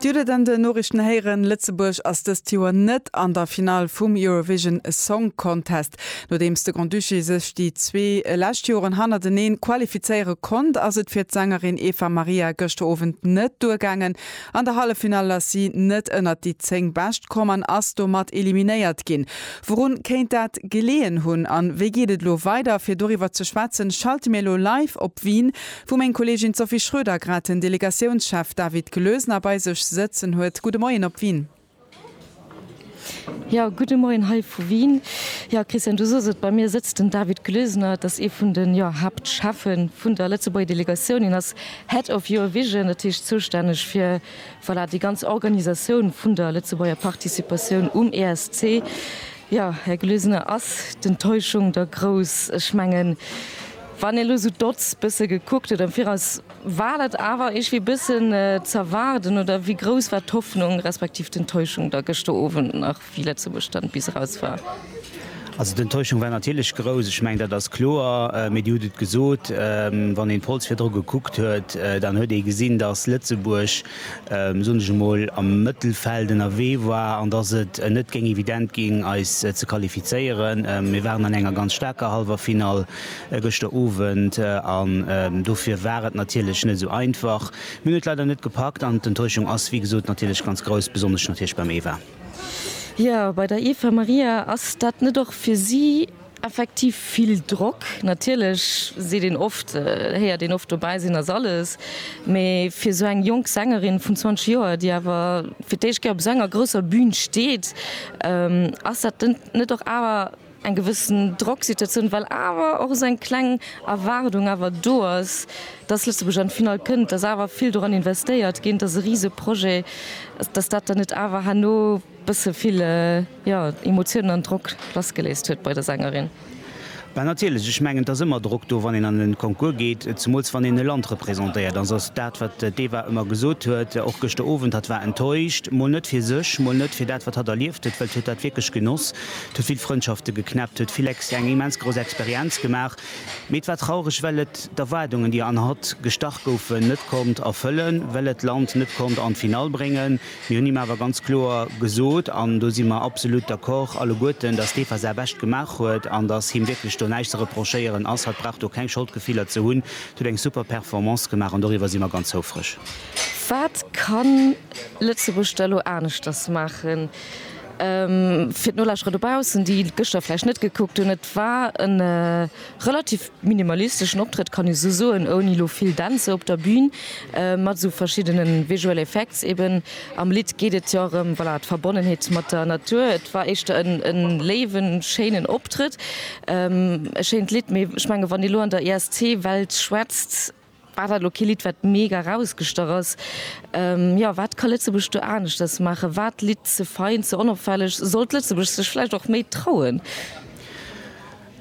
Dir hutt et an den Noriichten héieren, Lëtzebuerg ass dëst Joer net an der Finall vum Eurovision Song Contest. Nodeems de Grand-Duché sech déi zwee lescht Joren hannerteneen qualifizéiere konnt, ass et fir d'Sängerin Eva Maria gëschter Owend net duergaangen. An der Halleffinall ass si net ënnert déi 10 Bescht komm an ass domat eliminéiert ginn. Wourun kéint dat geleeën hunn an wéi geet et elo weider? Fir doriwwer ze schwätzen, schalte mir elo live op Wien Wou meng Kollegin Sophie Schroeder grad den Delegatiounschef David Glösner bei sech sëtzen huet. Gudde Moien op Wien. Jo, gudde Moien hei vu Wien. Jo, Christian, du sos et, bei mir sëtzt den David Glösner. Et ass ee vun de, jo, Haaptscheffe vun der Lëtzebuerger Delegatioun. Hien ass Head of Eurovision, dat heescht zoustänneg fir, voilà, déi ganz Organisatioun vun der Lëtzebuerger Participatioun um ESC. Jo, Här Glösner, ass d'Enttäuschung da grouss? Ech mengen. Wann een elo sou d'Odds bësse gekuckt huet am Viraus, war dat awer iergwéi bëssen z'erwaarden oder wéi grouss war d'Hoffnung respektiv d'Enttäuschung da gëschter Owend nach, wéi Lëtzebuerg dann bis eraus war? Also d'Enttäuschung war natierlech grouss, ech mengen dat ass kloer, mee Dir hutt et gesot, wann een d'Polls virdru gekuckt huet, dann huet ee gesinn, datt Lëtzebuerg, soen ech emol, am Mëttelfeld ënnerwee war an datt et net géing evident ginn eis ze qualifizéieren. Mir waren an enger ganz staarker Hallwerfinall gëschter Owend an dofir war et natierlech net esou einfach. Mir hunn et leider net gepackt an d'Enttäuschung ass wéi gesot natierlech ganz grouss, besonnesch natierlech beim Eva. Jo, bei der Eva Maria. Ass dat net och fir si effektiv vill Drock? Natierlech seet een oft, héiert een oft, dobäi sinn ass alles, mee fir esou eng jonk Sängerin vun 20 Joer, déi awer fir d'éischt Kéier op esou enger grousser Bün steet, ass dat net och awer, eng gewëssen Drocksituatioun, well awer och esou eng kleng Erwaardung awer do ass, dass Lëtzebuerg an d'Finall kënnt, dass awer vill doran investéiert géint ass, e rise Projet, dass dat dann net awer herno e bësse vill, jo, Emotiounen an Drock lassgeléist huet bei der Sängerin. Bah, natierlech, ech mengen, et ass ëmmer Drock do, wann een an e Concours geet, zemools wann een e Land representéiert. An se ass dat, wat d'Eva ëmmer gesot huet, och gëschter Owend, hatt war enttäuscht, mol net fir sech, mol net fir dat, wat hatt erlieft huet, well d'huet dat wierklech genoss. Et huet vill Frëndschafte geknäppt, huet vill Ex eng immens grouss Experienz gemaach. Mee et war traureg, well et d'Erwaardungen, déi an hatt gestach goufen, net konnt erfëllen, well et d'Land net konnt an d'Finall bréngen. Mir hunn him awer ganz kloer gesot, an do si mer absolut d'accord alleguerten, dass dee Fassah bescht gemaach huet an dass him wierklech do näischt ze reprochéieren ass. Hatt brauch do keng Scholdgefiller ze hunn. Hatt huet eng super Performance gemaach an doriwwer si mer ganz houfreg. Wat kann Lëtzebuerg da lo aneschters maachen? Fir d'Nolauschterer dobaussen, déi et gëschter vläicht net gekuckt hunn, et war e relativ minimalisteschen Optrëtt, kann ee sou soen, ouni elo vill Dänzer op der Bün, mat esou verschiddene visual effects eben. Am Lidd geet et jo erëm, voilà, d'Verbonnenheet mat der Natur. Et war éischter e léiwen, schéinen Optrëtt, e schéint Lidd, mee ech mengen, wann ee elo an der ESC-Welt schwätzt, War dat elo kee Lidd wat mega erausgestach ass? Jo, wat ka Lëtzebuerg do aneschters maachen? War d'Lidd ze fein, ze onopfälleg? Sollt Lëtzebuerg sech vläicht och méi trauen?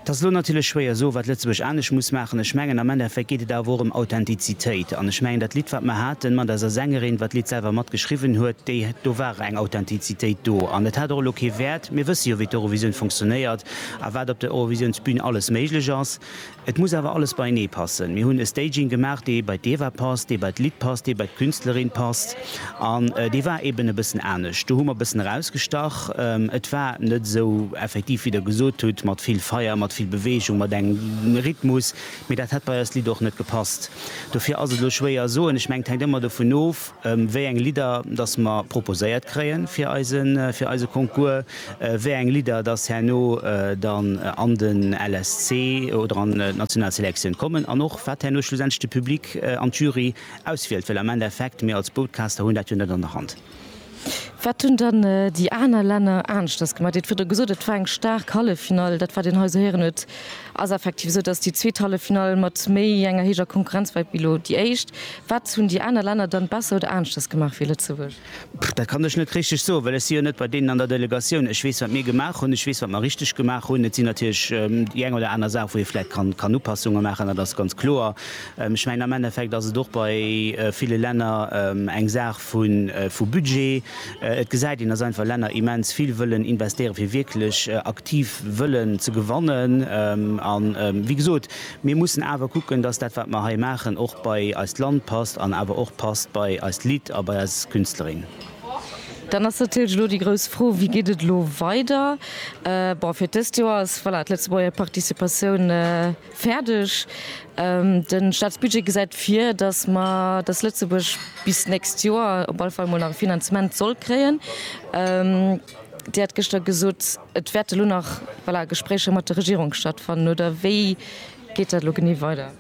Et ass elo natierlech schwéier soen, wat Lëtzebuerg anescht muss maachen. Ech mengen am Endeffekt geet et awer och ëm Authentizitéit. An ech mengen dat Lidd wat mer haten mat eiser Sängerin, wat d'Lidd selwer mat geschriwwen huet, déi, do war eng Authentizitéit do. An et hat och elo kee Wäert, mir wësse jo wéi d'Eurovisioun funktionéiert a wat op der Eurovisiounsbün alles méiglech ass. Et muss awer alles beienee passen. Mir hunn e Staging gemaach, dee bei d'Eva passt, dee bei d'Lidd passt, dee bei d'Künstlerin passt. An dee war eben e bëssen anescht. Do hu mer e bëssen erausgestach. Et war net esou effektiv, wéi Der gesot hutt, mat vill Feier, mat vill Beweegung, mat engem Rhythmus. Mee dat hätt bei eist Lidd och net gepasst. Dofir ass et elo schwéier soen. Ech mengen, et hänkt ëmmer dovun of, wéi eng Lidder datt mer proposéiert kréie fir eise fir eise Concours, wéi eng Lidder datt herno dann an den LSC oder an d'national Selektioun kommen an och wat herno schlussendlech de Public an d'Jury auswielt, well am Endeffekt mir als Broadcaster hunn dat jo net an der Hand. Wat hunn dann déi aner Länner aneschters gemaach? Dir hutt virdu gesot, et war eng staark Halleffinall, dat wat een hei esou héieren huet. Ass effektiv esou, dass déi zweet Halleffinall mat méi enger héijer Konkurrenz war wéi elo déi éischt. Wat hunn déi aner Länner dann besser oder aneschters gemaach wéi Lëtzebuerg? Dat kann ech net richteg soen, well ech si jo net bei deenen an der Delegatioun. Ech weess, wat mir gemaach hunn, ech weess, wat mer richteg gemaach hunn. Et sinn natierlech déi eng oder aner Saach, wou ee vläicht kann Upassungen maachen, dat ass ganz kloer. Ech mengen, am Endeffekt ass et och bei ville Länner eng Saach, vu Budget. Et gesäit een, datt einfach Länner immens vill wëllen investéieren, fir wierklech aktiv wëllen ze gewannen. A wéi gesot, mir mussen awer kucken, datt dat, wat mer hei maachen, och bei eist Land passt an awer och passt bei eist Lidd a bei eis Künstlerin. Dann ass natierlech elo déi grouss Fro, Wéi geet et elo weider? Bon, fir d'dëst Joer ass, voilà, d'Lëtzebuerger Participatioun, Fäerdeg. De Staatsbudget gesäit vir, datt mer, datt Lëtzebuerg bis d'nächst Joer op alle Fall emol nach e Finanzement soll kréien. Dir hat gëschter gesot, et wäerte lo nach, voilà, Gespréicher mat der Regierung stattfannen, oder wéi geet dat elo genee weider?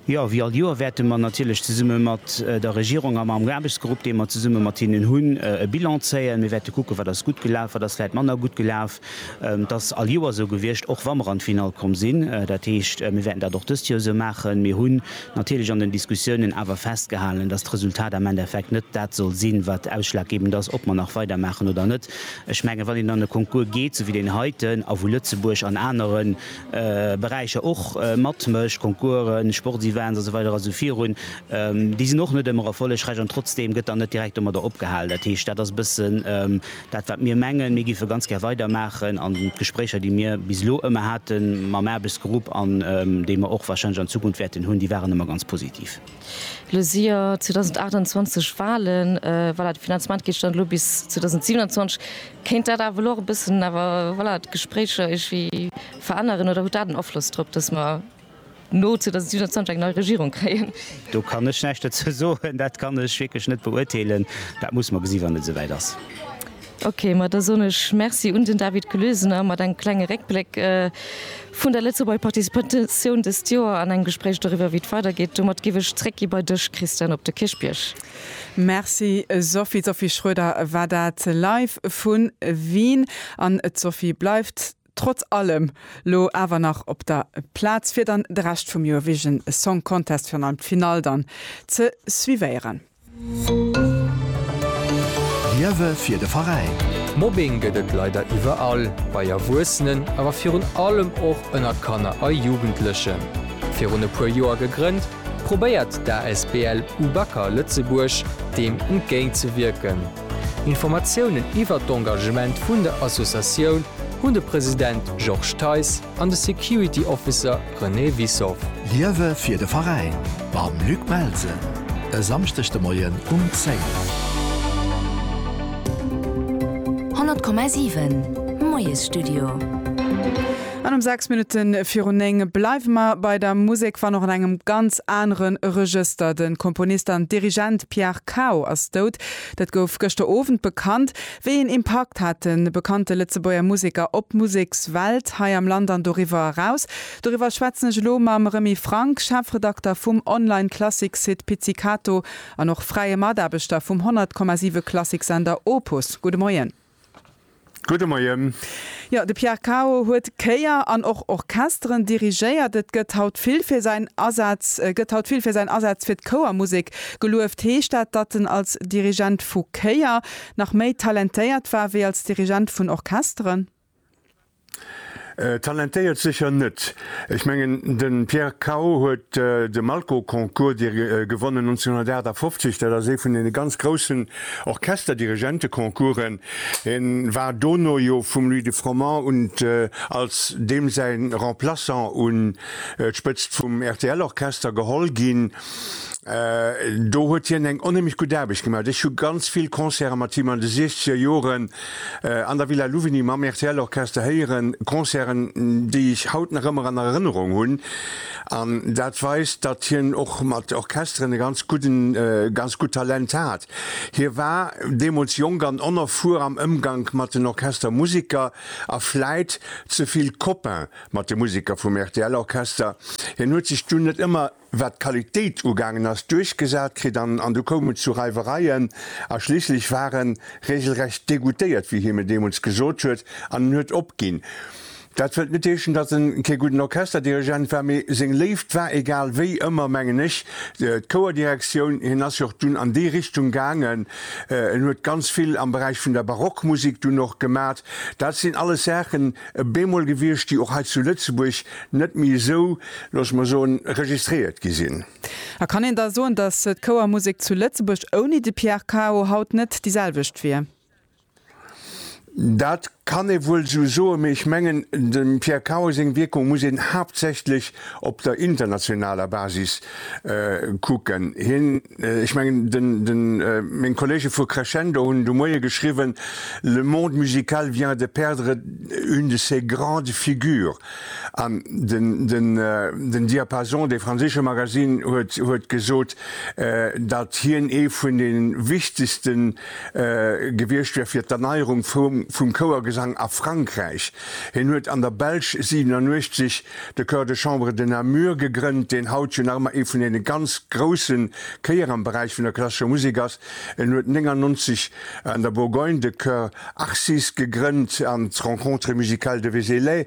Jo, wéi all Joer wäerte mer natierlech zesumme mat der Regierung a mam Aarbechtsgrupp, dee mer zesumme mat hinnen hunn, e Bilan zéien. Mir wäerte kucken, wat ass gutt gelaf, wat ass vläicht manner gutt gelaf. Et ass all Joer esou gewiescht, och wa mer an d'Finall komm sinn. Dat heescht, mir wäerten dat och dëst Joer esou maachen. Mir hunn natierlech an den Diskussiounen awer festgehalen, dass d'Resultat am Endeffekt net dat soll sinn, wat ausschlaggebend ass, ob mer nach weidermaachen oder net. Ech mengen, wann een an e Concours geet, esou wéi deen heiten, a wou Lëtzebuerg an anere Beräicher och matmécht, Concoursen, Sportsevents a sou weider a sou virun, déi sinn och net ëmmer erfollegräich an trotzdeem gëtt dann net direkt domadder opgehalen. Dat heescht, dat ass e bëssen Dat wat mir mengen, mir géife ganz gär weidermaachen an d'Gespréicher déi mir bis elo ëmmer hate mam Aarbechtsgrupp an déi mer och wahrscheinlech an Zukunft wäerten hunn, déi waren ëmmer ganz positiv. Elo si jo 2028 Wahlen, voilà, de Finanzement geet dann elo bis 2027. Kéint dat awer elo och e bëssen awer, voilà, d'Gespréicher iergendwéi veränneren oder huet dat en Afloss drop, datt mer, No zu, dass Susan Zandsch eng nei Regierung kréien. Do kann ech näischt dozou soen. Dat kann ech wierklech net beurteelen. Dat muss mer gesi wann et esouwäit ass. Ok, ma da soen ech Merci un den David Gelesener mat engem klenge Réckbléck vun der Lëtzebuerger Participatioun dëst Joer an engem Gespréich doriwwer, wéi et weidergeet. Domat géif ech zréckgi bei dech, Christian, op de Kierchbierg. Merci Sophie. D'Sophie Schroeder war dat live vu Wien. An d'Sophie bleift Trotz allem lo awer nach op der Plaatz fir dann de Rescht vum Eurovision Song Contest, virun allem d'Finall dann ze suivéieren. Liewe fir de Veräin. Mobbing gëtt et leider iwwerall, bei Erwuessenen, awer virun allem och ënner Kanner a Jugendlechen. Virun e puer Joer gegrënnt, probéiert d'ASBL Ubacker Lëtzebuerg deem entgéintzewierken. Informatiounen iwwert d'Engagement vun der Associatioun hunn de President Georges Theis an de Security Officer René Wissoff. Liewe fir de Veräin mam Luc Melsen e Samschdeg de Moien um 10. 100,7, Moiesstudio. An um 6 Minutten virun 9 bleiwe mer bei der Musek, wann och an engem ganz anere Regëster. De Komponist an Dirigent Pierre Cao ass dout. Dat gouf gëschter Owend bekannt, wéi een Impakt hat de bekannte Lëtzebuerger Museker op d'Musekswelt hei am Land an doriwwer eraus. Doriwwer schwätzen ech elo mam Remy Franck, Chefredakter vum Online-Klassik-Site Pizzicato an och fräie Mataarbechter vum 100,7 Klassiksender Opus. Gudde Moien. Gudde Moien. Jo, de Pierre Cao huet Chéier an och Orchesteren dirigéiert. Et gëtt haut vill fir säin Asaz, gëtt haut vill fir säin Asaz fir d'Chouermusek gelueft. Heescht dat, datt en als Dirigent vu Chéier nach méi talentéiert war wéi als Dirigent vun Orchesteren? Talentéiert sécher net. Ech mengen, de Pierre Cao huet de Malko-Concours dir gewonnen 1958. Dat ass ee vun deene ganz groussen Orchesterdirigente-Concoursen. Hie war dono jo vum Louis de Froment un als deem säi Remplaçant un d'Spëtzt vum RTL-Orchester geholl ginn. Do huet hien eng onheemlech gutt Aarbecht gemaach. Ech hu ganz vill Concerte mat him an de Siechzegerjoren an der Villa Louvigny mam RTL Orchester héieren, Concerten déi ech haut nach ëmmer an Erënnerung hunn an dat weist datt hien och mat Orchesteren e ganz gudden, ganz gutt Talent hat. Hie war deemools jonk an onerfuer am Ëmgank mat den Orchestermusiker a vläit ze vill Copain mat de Musiker vum RTL Orchester. Hien huet sech dunn net ëmmer wat d'Qualitéit ugaangen ass, duerchgesat kritt an an du koum et zu Reiwereien a schliisslech war en reegelrecht degoutéiert, wéi hie mir deemools gesot huet, an en huet opginn. Dat wëllt net heeschen, datt en kee gudden Orchesterdirigent war, mee seng Léift war egal wéi ëmmer, mengen ech, d'Chouerdirektioun. Hien ass jo och dunn an déi Richtung gaangen, en huet ganz vill am Beräich vun der Barockmusek dunn och gemat. Dat sinn alles Saachen bemol gewiescht, déi och hei zu Lëtzebuerg net méi esou, loosse mer soen, registréiert gi sinn. A kann een da soen, datt d'Chouermusek zu Lëtzebuerg ouni de Pierre Cao haut net déi selwecht wier? Dat kann ee wuel esou soen, mee ech mengen, dem Pierre Cao seng Wierkung muss een haaptsächlech op der internationaler Basis kucken. Hien Ech mengen, den, meng Kollege vu Crescendo hunn de Moie geschriwwen, Le monde musical vient de perdre une de ses grandes figures. An den, den, den Diapason, dee franséische Magasinn, huet, huet gesot, datt hien ee vun de wichtegste gewiescht wär fir d'Erneierung vum, vum Chouergesang a Frankräich. Hien huet an der Belsch 87 De Chœur de Chambre de Namur gegrënnt, deen haut jo nach ëmmer ee vun deene ganz grousse Chéier am Beräich vun der klassescher Musek ass. En huet 99 an der Bourgogne de Chœur Arcis gegrënnt an d'Rencontres musicales de Vézelay.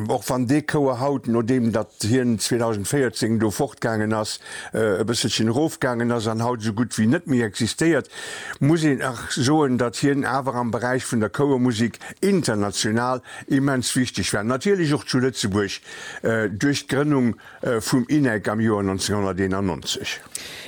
Och wann dee Chouer haut, nodeem datt hien 2014 do fortgaangen ass, e bësselchen erofgaangen ass an haut esou gutt wéi net méi existéiert, muss een soen, datt hien awer am Beräich vun der Chouermusek international Immens wichteg war natierlech och zu Lëtzebuerg duerch d'Grënnung vum INEC am Joer 1991.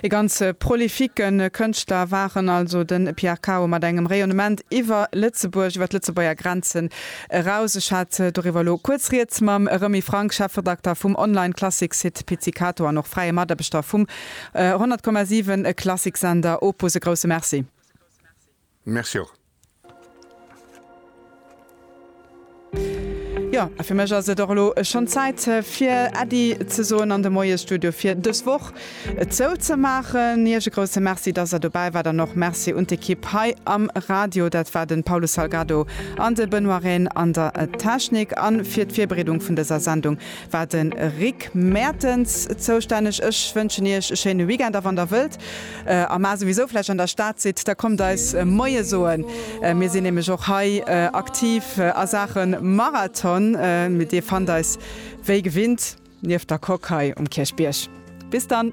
E ganz prolifique Kënschtler war en also, de Pierre Cao, mat engem Rayonnement iwwer Lëtzebuerg, iwwer d'Lëtzebuerger Grenzen eraus. Ech hat doriwwer elo kuerz Rieds mam Remy Franck, Chefredakter vum Online-Klassik-Site Pizzicato an och fräie Mataarbechter vum 100,7 Klassiksender Opus. E grousse Merci. Merci och. Jo, a fir mech ass et och elo schonn Zäit, fir Äddi ze soen an de Moiesstudio fir dës Woch zouzemaachen. Iech e grousse Merci, dass der dobäi waart an och Merci un d'Ekipp hei am Radio. Dat war de Paulo Salgado an de Benoît Rehn an der Technik. A fir d'Virbereedung vun dëser Sendung War den Rick Mertens zoustänneg. Ech wënschen iech e schéine Weekend a wann der wëllt a mar souwisou vläicht an der Stad sidd, da kommt eis Moie soen. Mir sinn nämlech och hei aktiv a Saache Marathon. Dir fannt eis wéi gewinnt nieft der Coque hei um Kierchbierg. Bis dann!